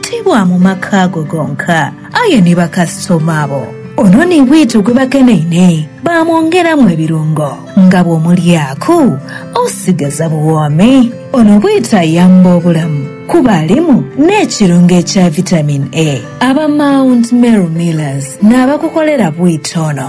Ti bwa mu maka ago gonka, aye ni bakasitoma abo. Ono ni bwito gwe bakeneine, baamwongeramu ebirungo nga bw'omulyaaku osigaza buwoomi. Ono bwito ayamba obulamu kuba alimu n'ekirungo ekya Vitamin A. Aba Mount Meru Millers n'abakukolera bwito ono.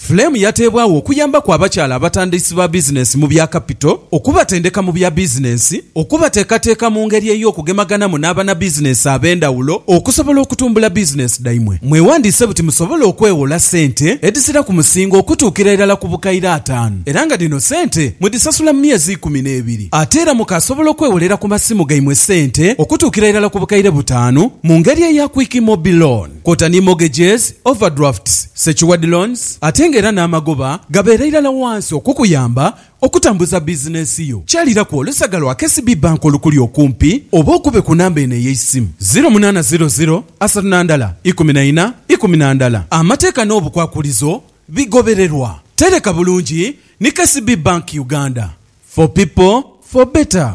Flame yateebwagho okuyambaku abakyala abatandiisi ba bizinensi mu bya kapito, okubatendeka mu bya bizinensi, okubateekateeka mu ngeri ey'okugemaganamu n'abanabizinensi ab'endhawulo okusobola okutumbula bizinensi dhaimwe. Mwewandiise buti musobole okweghola ssente edhisira ku musingo okutuukira irala ku bukaire ataanu era nga dhino ssente mudhisasula mu myezi ikumi n'ebiri. Ate era mukaasobola okwegholera ku masimu gaimwe ssente okutuukira irala ku bukaire butaanu mu ngeri eya Quick Mobi Loan. kwota ni mortgages, overdrafts, secured loans ate nga era n'amagoba gabeera irala wansi okukuyamba okutambuza bizinensi yo. Kyaliraku olusaga lwa KCB Bank olukuli okumpi oba okube ku namba eno ey'eisimu, ziro munaana ziro ziro asatu na ndala ikumi na ina ikumi na ndala. Amateeka n'obukwakulizo bigobererwa. Tereka bulungi ni KCB Bank Uganda. For people, for better.